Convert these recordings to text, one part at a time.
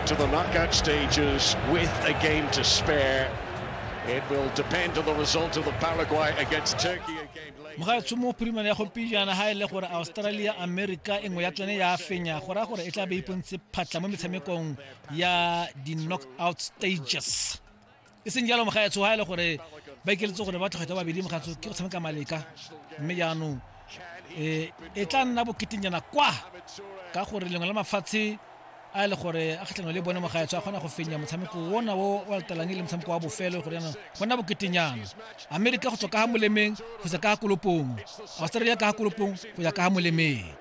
to the knockout stages with a game to spare. It will depend on the result of the Paraguay against Turkey game later. mogaetsho mo primane ya gompiejana ga e le gore australia america e nngwe ya tsone ya fenya go raya gore e tla be ipontse phatlha mo metshamekong ya di-knockout stages e seng jalo moga ya tshoga ele gore ba ikeletse gore ba tlhogetsa babedi mogatso ke go tshameka maleka mme jaanong um e tla nna boketenyana kwa ka gore lengwe la mafatshe a e le gore a kgatlhanong le bone mogaetsho a kgona go fenya motshameko ona o o latelang e le motshameko wa bofelo gore yana go nna boketenyana amerika go tswa ka ga molemeng go tswa ka ga kolopong australia ka ga kolopong go ya ka ga molemeng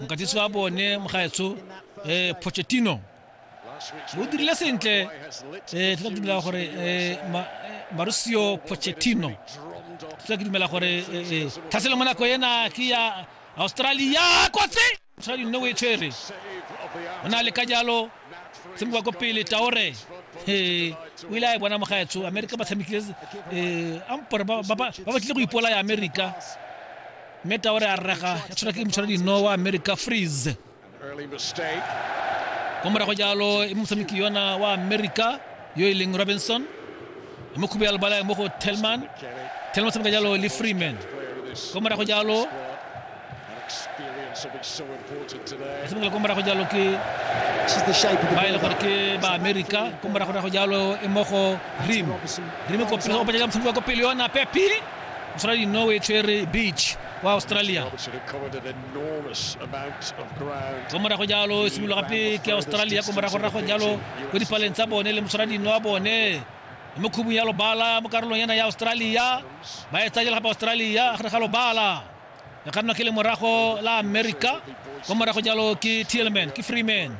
mokatisi wa bone mogaetsho um eh, pochettino o dirile sentle um eh, tla dumela gore um eh, marusio pochettino tla ke dumela gore tlhaselo mo nako ena ke ya australia kotsi australia nne o e tshwere o na le ka jalo se mo ba ko pele taore o ile a e bona mogaetsho amerika ba tshamekile um ampore ba batlile go ipola ya amerika mme taore a rega ya tshwara ke motshwara dinowa america freeze kwa morago jalo e motshameki yona wa america yo e leng robinson e mo khubu ya lebala mo go telman telman tshameka jalo le freeman kwa morago jalo tshamekela kwa morago jalo ke ba e le gore ke ba america kwa morago jalo e mo go rim rim ko pele o patela motshameki wa ko pele yona pepi Australia Norway tshwere beach wa Australia ko morago jalo e simologa pele ke Australia ko morago rago jalo ko dipaleng tsa bone le moshwaradi wa bone mo khubung ya lobala mo karolong yana ya Australia ba e tsajela gape Australia gare ga lobala e ka nna ke le morago la America ko morago jalo ke Tillman ke Freeman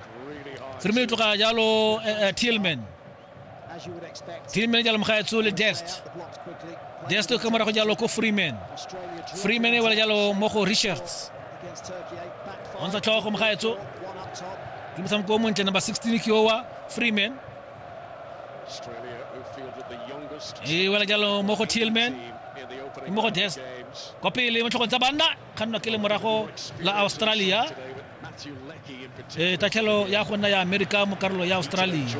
Freeman tloga jalo eh, eh, Tillman Team manager le mogaetsi o le Dest. Dest o ka morago jalo ko Freeman. Freeman e wela jalo mo go Richards. O ntsha tlhogo go mogaetso. Ke motshameko o montle number 16 ke owa Freeman. E wela jalo mo go Tillman. Ke mo go Dest. Kwa pele mo tlhogong tsa banna. kgannwa ke lemorago la australia e tatlhelo ya go nna ya amerika mo karolo ya australia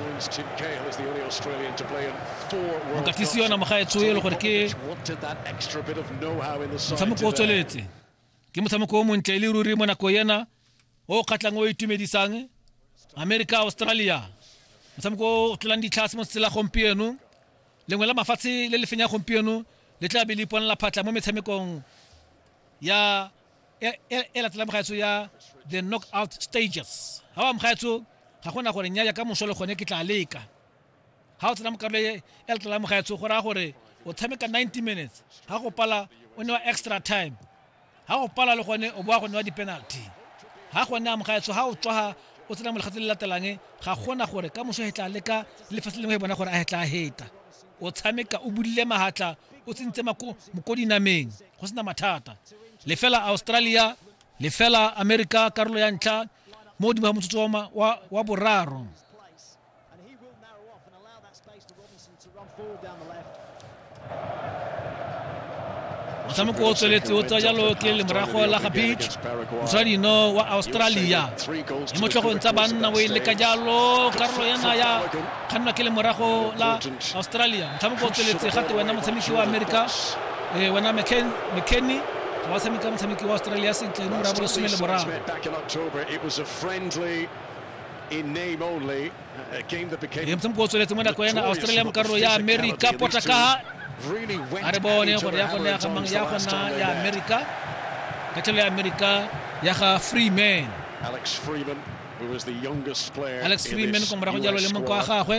mokatisi yona mogaetsho e le gore ke motshameko o tsweletse ke motshameko o montle e le ruri mo nako ena o kgatlhang o itumedisang america australia motshameko o o tlolang ditlhase mo tsela la gompieno lengwe la mafatshe le le fenya gompieno le tla be le iponela phatlha mo metshamekong ya e e- e latelang mogaetso ya the knockout stages ga wa mogaetso ga gona gore nyaya ka moso le gone ke tla leka ga o tsena mo karolo e e latelang mo gaetsho go raya gore o tshameka 90 minutes ga go pala o newa extra time ga go pala le gone o boa go newa di-penalty ga gone a mogaetsho ga o tswaga o tsena mo legatse le latelang ga gona gore ka moso hetla leka lefatshe lengwe e bona gore a hetla a heta o tshameka o budile mahatla o tsentse moko dinameng go sena mathata lefela australia lefela america karolo ya ntlha mo godimo ga motsotso wa boraro motshameko o tsweletse o tsaya jalo ke lemorago la ga beach mosadino wa australia le motlhogong tsa banna o e leka jalo karolo yana ya kgannwa ke lemorago la australia motshameko o tsweletse gate wena motshameki wa america eh, wena mckenny ga wa tshameka motshameki wa australia sentle nomora bo lesome le boraro re ntse moko o tsweletse mo nako ena australia mo karolo ya america potakaga a re bone gore ya gona ya gamang ya gona ya america khathelo ya america ya ga freeman alex freeman alex freeman ko morago jalo le moko wa gagwe